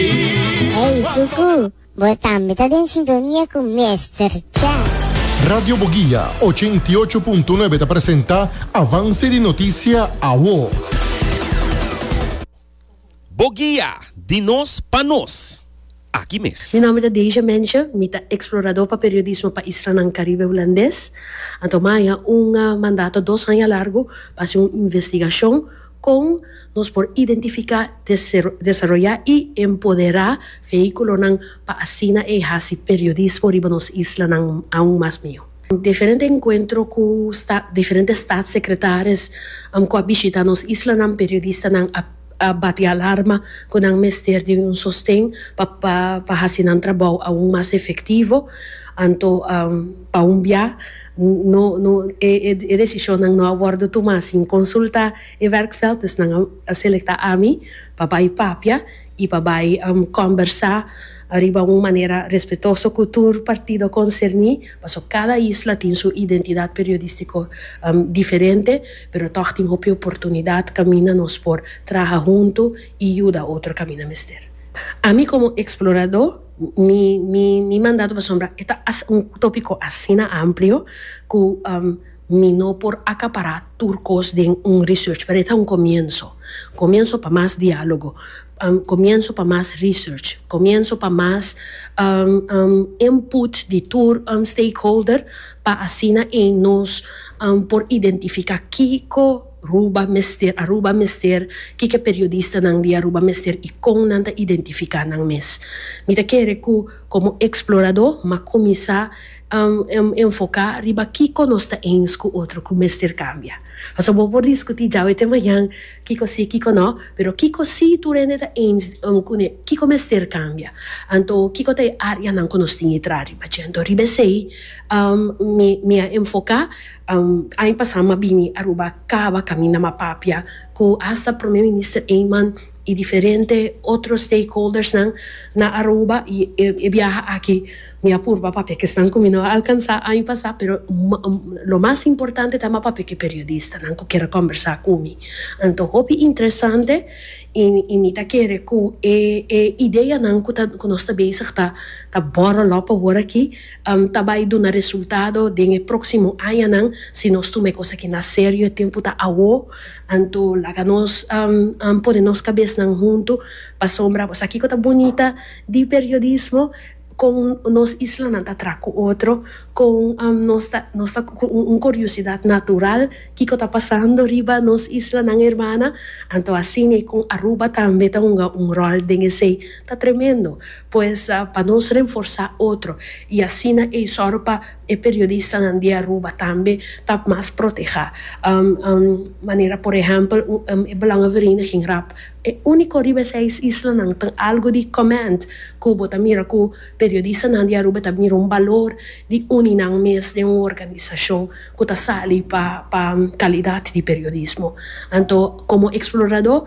Ey Zuku, bo tambe ta den sintonia cu Mester Cha. Radio Boguia ochenta i ocho punto nuebe ta presenta avance di noticia awo. Boguia, di nos pa nos. Aki mes. Mi nomber ta Deja Mensje, mi ta explorador pa periodismo pa Islanan Caribe Hulandes. A toma aña un mandato dos aña largo pa haci un investigacion. Kon nos por identifiká, desaroyá i empoderá veíkulonan pa asina e hasi periodismo riba nos islanan aun mas mihó? Diferente enkuentro ku diferente statssekretaris ku a bishitá nos islanan, periodistanan a bati alarma ku nan mester di un sosten pa hasi nan trabou aun mas efektivo. Anto pa un biá. E decisionnan no a wordo tuma sin consulta e werkveld, dus nan a selecta ami pa bay papia y pa bay combersa ariba un manera respetoso cu tur partido concerni, paso cada isla tin su identidad periodistico diferente, pero toch tin hopi oportunidad caminda nos por traha hunto y yuda otro caminda mester. Ami como explorado. Mi mi mi mandato pasobra e ta as un tópiko asina amplio ku mi no por akapará tur kos den un research pero e ta un komienso komienso pa mas diálogo komienso pa mas research komienso pa mas input di tur stakeholder pa asina nos por identifiká kiko Ruba mester, Aruba mester, kiko e periodistanan di Aruba mester i kon nan ta identifiká nan mes? Mi ta kere ku komo eksploradó m'a kuminsá enfoká riba kiko nos ta ens ku otro ku mester kambia. Pasobra bo por diskutí djawe te mañan kiko sí, kiko nò, pero kiko sí tur hende ta ens kuné, kiko mester kambia. Anto kiko ta e áreanan ku nos tin i traha riba dje? Anto riba esei mi a enfoká. Aña pasá m'a bini Aruba kaba kaminda m'a papia ku hasta Prome Minister Eman i diferente otro stakeholdersnan na Aruba i e biaha aki mi a purba papia ke esnan ku mi no a alkansá aña pasá pero lo mas importante ta m'a papia ku e periodistanan ku kere kombersá ku mi. Anto hopi interesante i mi ta kere ku e ideanan ku nos ta bezig ta bòrrel òp awor aki. ta bai duna resultado den e próksimo añanan si nos tuma e kos aki na serio. E tempu ta awo, anto laga nos pone nos kabesnan huntu pasobra bo sa kiko ta bunita di periodismo, kon nos islanan ta traha ku otro, kon nos ta nos ta ku un kuriosidad natural kiko ta pasando riba nos islanan hermana, anto asina kon Aruba tambe ta hunga un ròl den esei. Ta tremendo! Pues, pa nos renforsá otro i asina eisòru pa e periodistanan di Aruba tambe ta mas protehá manera por ehèmpel e Belangenvereniging rap, e úniko riba e seis islanan tin algu di comment ku bo ta mira ku periodistanan di Aruba ta mira un balor di uni nan mes den un organisashon ku ta sali pa kalidat di periodismo. Anto komo eksploradó.